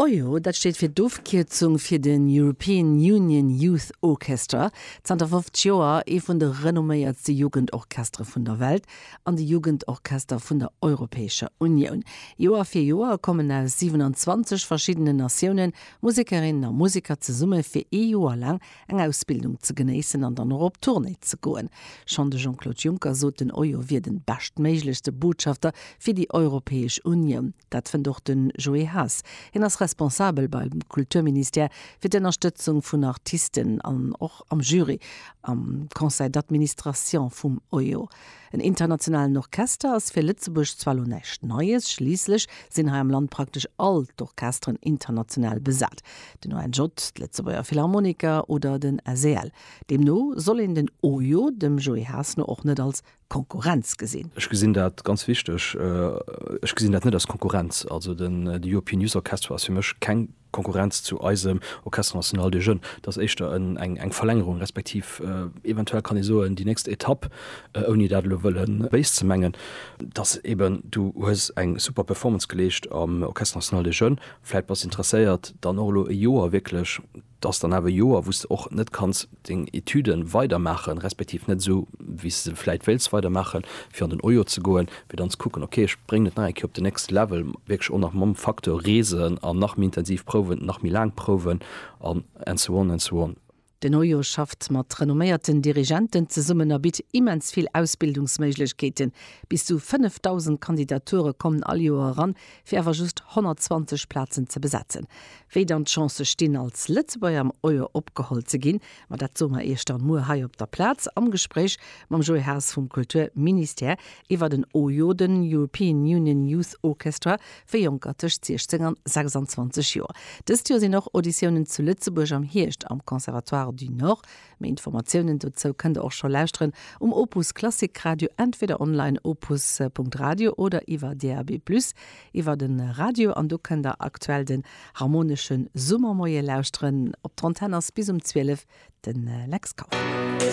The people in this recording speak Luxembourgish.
Ojo, dat steet fir d'Ofkierzung fir den European Union Youth Orchestra, zanter 50 Joer ee vun de renomméiertste Jugendorchestere vun der Welt an de Jugendorchester vun der Europäescher Unioun. Joer fir Joer kommen aus 27 verschiddenen Natiounen Musekerinnen a Museker zesumme fir ee Joer laang eng Ausbildung ze genéissen an dann och op Tournée ze goen. Schonn de Jean-Claude Juncker sot, den Euro wier den beschtméiglechste Botschafter fir déi Europäesch Unioun. Dat fënnt och den Joé Haas. Hien ass Responsabel beim Kulturministère fir d'Ënnerstëtzung vun Artisten an och am Jury am Conseil d'administration vum Euro. En internationalen Orchester ass fir Lëtzebuerg zwar lo näischt Neies, schliisslech sinn hei am Land praktesch all d'Orchesteren international besat, den ONJ, d'Lëtzebuerger Philharmoniker oder den SEL. Deemno soll een den OJO dem Joé Haas no och net als Konkurrenz gesinn. Ech gesinn dat ganz wichteg. Ech gesinn dat net als Konkurrenz. Also den European Youth Orchestra ass fir mech keng Konkurrenz zu eisem Orchestre National des Jeunes, et ass éischter eng Verlängerung, respektiv eventuell kann ee soen, déi nächst Etapp, ouni dat elo wëlle béis ze mengen, dass eben du hues eng super Performance geleescht am Orchestre National des Jeunes, vläit bass interesséiert dann och elo e Joer wierklech, et ass dann awer e Joer, wou s de och net kanns deng Etüde weider maachen, respektiv net esou wéi s de se vläit wéilts weider maachen, fir an den OJO ze goen, fir dann ze kucken, ok ech bréngen et nach eng Kéier op den nächste Level, wierklech och nach mam Facteur reesen an nach méi intensiv prouwen, nach méi laang prouwen an and so on and so on. Den OJO schafft mat renomméierten Dirigenten zesummen a bitt immens vill Ausbildungsméiglechkeeten. Bis zu 5.000 Kandidature kommen all Joer eran, fir awer just 120 Plazen ze besetzen. Wéi dann d'Chancë stinn, als Lëtzebuerger am Euro opgeholl ze ginn, ma dat soe mer Iech dann muer hei op der Plaz am Gespréich mam Joé Haas vum Kulturministère iwwer den EUYO, den European Union Youth Orchestra, fir Jonker tëscht 16 an 26 Joer. Dëst Joer sinn och Auditiounen zu Lëtzebuerg am Hierscht am Conservatoire du Nord. Méi Informatiounen dozou kënnt der och scho lauschteren um Opus Klassikradio, entweder online opus.radio oder iwwer DAB+ iwwer de Radio. An do kënnt der aktuell den Harmonesche Summermoie lauschteren. Op der Antenn ass bis um 12 de Lex Kauffmann.